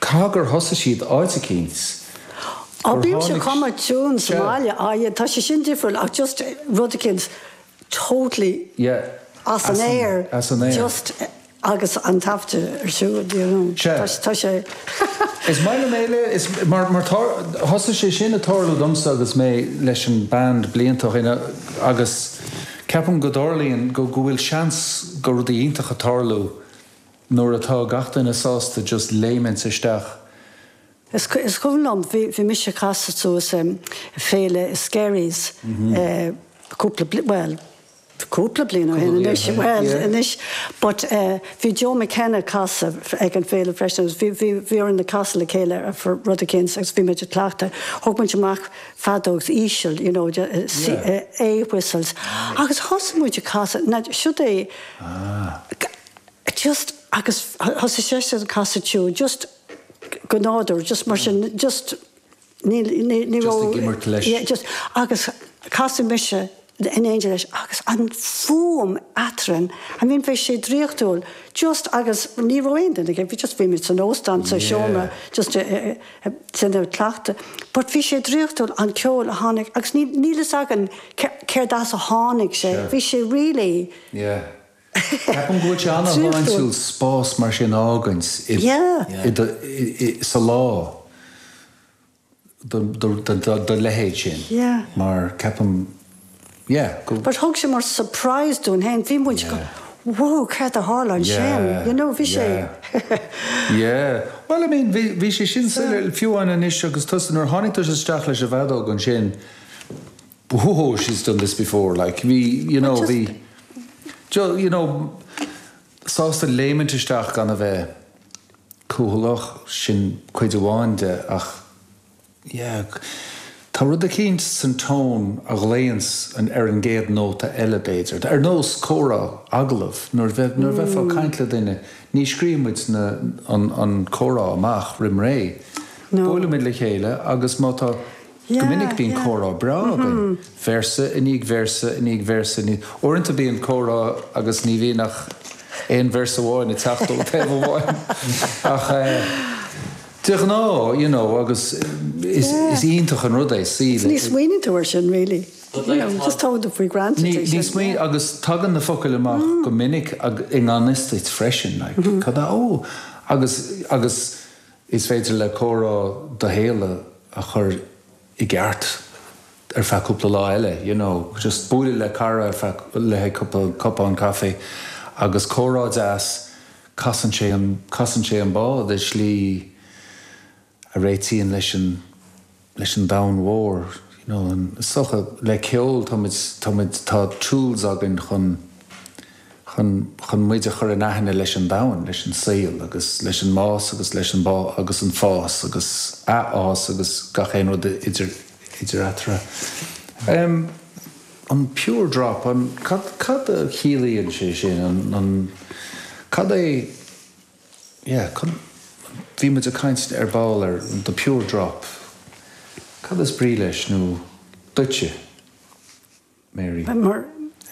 Cé gur thosaigh siad áit eicínt, Á, gur, bímse ag canadh, cuma, tiúin sa, yeah, mbaile, á, yeah, tá sé sin difriúil ach just rud eicínt totally Yeah, as an as an, aer, as an aer. just agus an taifeadadh ar siúl, do you know, tá sé, tá sé. Is maith liom é le, is, mar, mar tá, thosaigh sé sin ag tarlú domsa agus mé leis an band blianta ó shin agus ceapaim go dtarlaíonn, go, go bhfuil seans do rudaí iontacha tarlú. Nuair atá gach duine sásta just léimint isteach. Is cuimhin liom bhí mise ag casadh suas i Féile Skerries cúpla bliain, bhuel cúpla bliain ó shin anois, bhuel anois but bhí Joe McKenna ag casadh ag an bhféile freisin agus bhí bhí orainn ag casadh le chéile ar rud eicínt agus bhí muid ag cleachtadh, thóg muid amach feadóg íseal you know A whistles agus thosaigh muid ag casadh, siud é just agus thosaigh seisean ag casadh tiúin just go nádúrtha just mar sin just níl ní ní just ag imirt leis yeah just agus chas mise in éindí leis agus an fhuaim eadrainn I mean bhí sé draíochtúil just agus ní raibh aon duine ag bhí just bhí mé san óstán sa seomra yeah just eh, eh, eh, ag cleachtadh but bhí sé draíochtúil an ceol a tháinig agus ní níl a fhios agam céard as a tháinig sé sure bhí sé really yeah Ceapaim go bhfuil sé an-sláintiúil spás mar sin a fhágaint sa lá do leithéid sin mar ceapaim yeah go. But thug sé mar surprise dúinn féin, bhí muid going wow cad a tharla ansin you know bhí sé yeah bhuel I mean bhí sé sin soiléir fiú amháin anois agus tusa nuair a tháinig tusa isteach leis an bhfeadóg ansin, Whoa, she's done this before like bhí you know bhí just you know sásta léimint isteach gan a bheith cúthaileach, sin cuid amháin de ach yeah tá rud eicínt san tone a ghlaonns ar an gcéad nóta eile b'fhéidir, ar nós comhrá agallamh nuair bheith nuair bheifeá ag caint le duine ní scríobhann muid na an an comhrá amach roim ré. No. Buailimid le chéile agus má tá Go minic bíonn comhrá breá againn, véarsa i ndiaidh véarsa i ndiaidh véarsa i ndiaidh. Uaireanta bíonn comhrá agus ní bhíonn ach aon véarsa amháin ag teacht ó thaobh amháin. Ach de ghnáth, you know, agus is iontach an rud é suí le. Ní smaoiníonn tú ar sin really, you know, just tógann tú for granted é sin. Ní smaoiníonn agus tagann na focail amach go minic i ngan fhios duit freisin like cad a, oh, agus, agus, Is féidir le comhrá do shaol a chur i gceart ar feadh cúpla lá eile, you know. Just bualadh le cara ar feadh, le haghaidh cupán caife agus comhrá deas, casann sé an, casann sé an bád i slí a réitíonn leis an, leis an domhan mhór, you know, an, so, le ceol, tá muid, tá muid, tá tools againn chun, chun, chun muid a chur in aithne leis an domhan, leis an saol agus leis an mbás agus leis an bás agus an fás agus athfhás agus gach aon rud idir, idir eatarthu. Em, an pure drop, an, cad, cad a chiallaíonn sé sin, an, an, cad é. yeah cad, bhí muid ag caint ar ball ar the pure drop, cad is brí leis nó duitse Mary? Mar,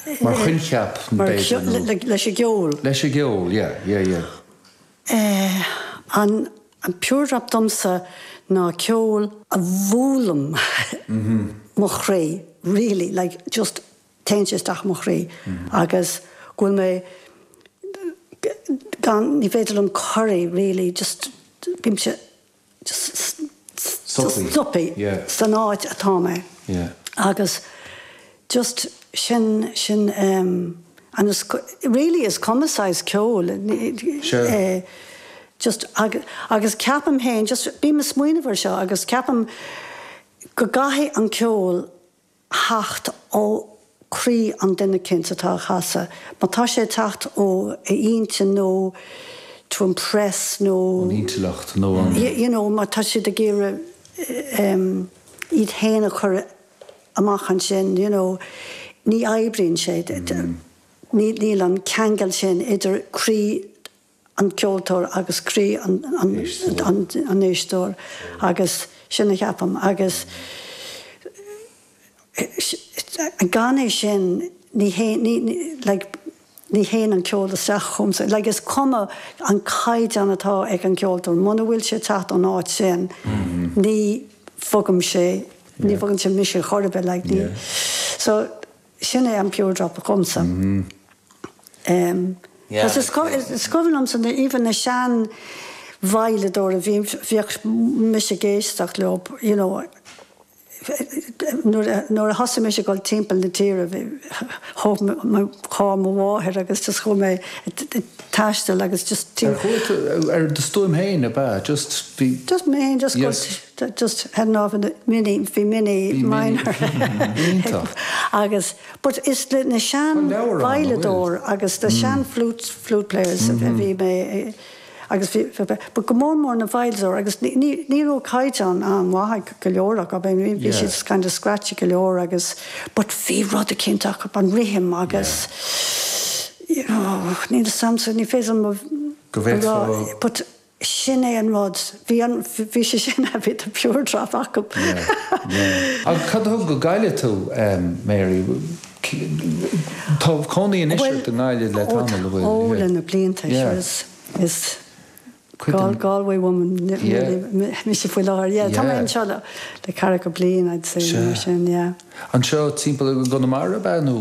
eh. Mar choincheap b'fhéidir nó. Mar, leis an gceol. Leis an gceol yeah, yeah, yeah. Eh an pure drop domsa ná ceol a bhualann mo chroí really like just Téann sé isteach i mo chroí agus go bhfuil mé gan, ní féidir liom corraí really just bímse just stoptha san áit atá mé agus just sin, sin em and is really is cuma cén saghas ceoil eh just agus ceapaim fhéin just bím a' smaoineamh ar seo agus ceapaim go gcaithfidh an ceol theacht ó croí an duine cinnte atá á chasadh. Má tá sé ag teacht ó a intinn nó to impress nó. an intleacht nó an. you know má tá siad ag iarraidh iad fhéin a chur amach ansin you know ní oibríonn sé. Níl an ceangal sin idir croí an ceoltóir agus croí an éisteora agus sin a cheapaim agus gan é sin ní théann an ceol isteach chugamsa like is cuma an caighdeán atá ag an gceoltóir muna bhfuil sé ag teacht ón áit sin ní bhogann sé ní bhogann sé mise chor ar bith like so Sin é an pure drop domsa. Cos is cuimhin liomsa na even na seanveidhleadóirí a bhíodh mise ag éisteacht leob you know nuair a nuair a thosaigh mise ag dul timpeall na tíre bhí thóg mé mo charr mo mháthair agus just chuaigh mé ag taisteal agus just Ar chuala tú ar do stuaim féin ab ea just bhí Just mé féin just That just had an-bhrea, mini, bhí mini, minor. Iontach. Agus, but is leis na sean veidhleadóirí agus na sean flute, flute players a bhí mé agus bhí, but go mór mór na veidhleadóirí agus ní, ní, ní raibh caighdeán an-mhaith go leor acu, I mean bhí siad kind of scratchy go leor agus but bhí rud eicínt acu, an rithim agus, you know, níl a fhios agamsa, ní féidir liom a rá, but. sin é an rud. Bhí an, bhí sé sin ann, bhí the pure drop acub. Yeah, yeah. Agus cad a thug go Gaillimh tú, em, Mary, tá cónaí anois ort i nGaillimh le tamall, a bhfuil? Bhuel, ó, ó, le na blianta, sure, is, is Gal, Galway woman mise faoi láthair, yeah, tá mé anseo le, le ceathracha bliain, I'd say, nó mar sin, yeah. Anseo timpeall i gConamara ab ea nó?